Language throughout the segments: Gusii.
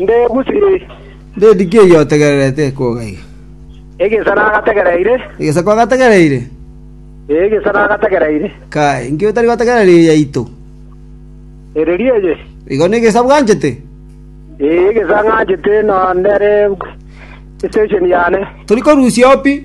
Ndegusii. Ndedi ki eyio otegererete koga iga? Egesa nagategereire. Egesa kwagategereire? Ee, egesa nagategereire. Kae, inki otari gotegerera eye yaito? Ereria eye. Igo negesa bwanchete? Ee, egesa ng'anchete, na nere station yane. Tori korusia oo pi.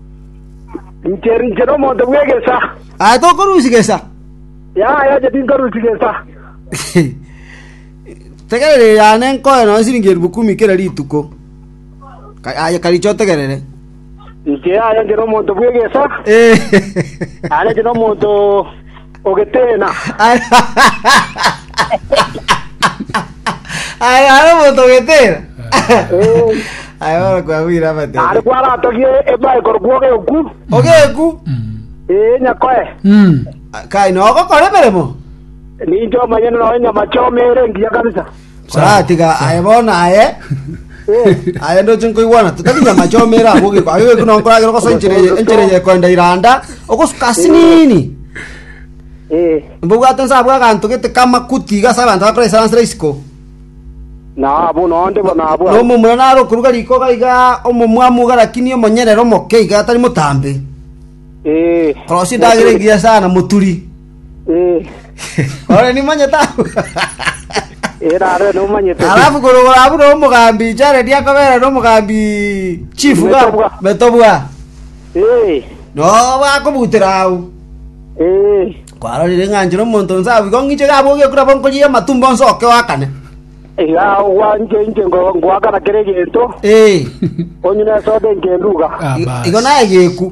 Inche rinche nomonto bw'egesa. Aye tokorusia gesa. Yaya, inche tinkorusia gesa. Tegerere yane nkoe nonya siringi eribu kumi kera rituko. Ka- Aye kariche otegerere. Inche yaya, inche nomonto bw'egesa. Aye inche nomonto Ogeteena. Aye are omonto ogetera. Aye bono kwagwire Are amatebe. kwaratogie ebae korokwa ogeku. Ogeku. Ee, nyakoe. Kai nogokora emeremo. Ninche omonyene noe nyamache omere engiya kabisa. Koratiga aye bono aye aye ndoche nkoigwana totari nyamache omera agwo geko aye geko nonye nkoragera ogose enchera eye enchera eye ekoenda iranda ogosuka asinini Eh, mbobwate nsa abwo aganto gete kamakuti iga ase abanto bakora esaransera isiko na abo nonde bo- nabo abo. nomomura naro okuruga rikoga iga omomwamu iga lakini omonyerere omoke iga atari motambe Eh, korosia endagera egiya sana moturi Eh, Ore nimanyete abwo. eh, nare nomanyete. Alafu korogora abwo nomogambi Jared akabera nomogambi chief ga Metobwa. metobwa. Eh, No bakobutera au. eh, Kwarorire ng'anchire omonto nse abu igo ng'iche gabo ogekura bonkoria amatumbo nse oke wakane. iga ogwanche inche ngo- ngoakana kere egento, Eh. onyine soda engenduga. Ah, I- bas. Igo naye geku.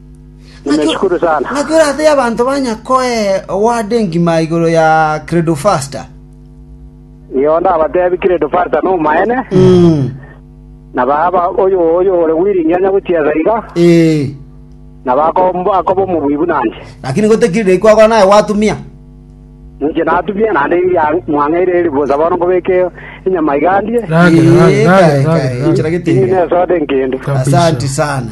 Nimeshukuru sana. Ng'aki orate y'abanto banya koe oward engima igoro ya Credofaster? Iyo ndabatebi Credofaster nomoene, na baba oyo oyo ore willing onye gochiesa iga, Ee. na bakomba akoba omobui buna inche. Lakini gotekirire kwagora naye gwatumia. Ninche natumia naende iria mwang'eire eri bosa bono nkobeke enyama iga ndie. Rage, rage, Ee, rage, kae, rage, kae, rage. inchera Inye gete. nesode nkende. Kabisa. Asante sana.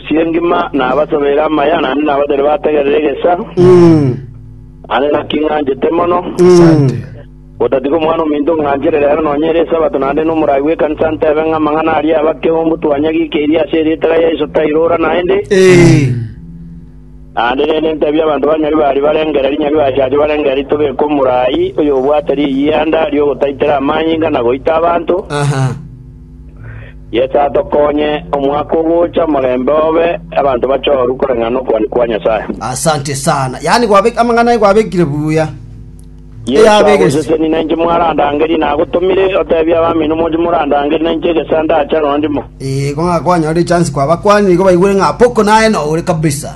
Chi'engima nabasobeire amaya, naende nabatebire bategerere egesa, naende naki ng'anchete mono, gotatiga Omwana-o-Ominto ng'anchere reero nonya ere Esabato, naende n'omorai bw'ekanisa ntebe ng'a amang'ana aria abakeumbu twanyagikeirie ase erieta ria Yeso tairora naende. Naende rende ntebia abanto ba Nyaribari barengere rinyaribachache barengere ritobeka omorai oyobwate riyianda ri'ogotaitera amanyinga na goita abanto, Yeso atokonye omwaka ogocha omorembe obe abanto bachorwe koreng'ana okobani kwa Nyasae. Asante sana. Yaani gwabek amang'ana aye gwabekire buya. Yeso Eyabegesi. agoseseni na inche mwarandangerie na agotomire otebie abamino moche morandangerie na inche egesa ndacha nonya ndimo. Igo ng'a kwanyorire chance kwabakwani nigo baigwere ng'a Apoko naye nore kabisa.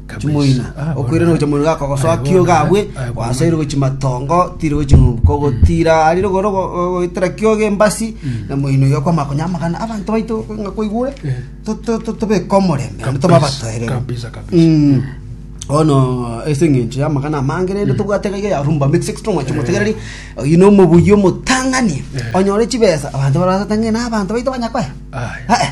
Chimoina, okoirana gocha mono gaka gosoa kio gabwe gwasoire gochi matongo tire gochi nuko gotira ari rogoro goitera kio gembasi na moino yo kwa makonya magana abanto baito nga koigure tobeka omorembe na toba batoerere kabisa kabisa Mm. bono ase eng'encho ya amagana amange rende tobwate gaiga ya rumba mix extra mwachi motegereri oyu na omobuya omotang'ani onyore chibesa abanto barasete ng'ina abanto baito banyakoya Aye. Eh, eh.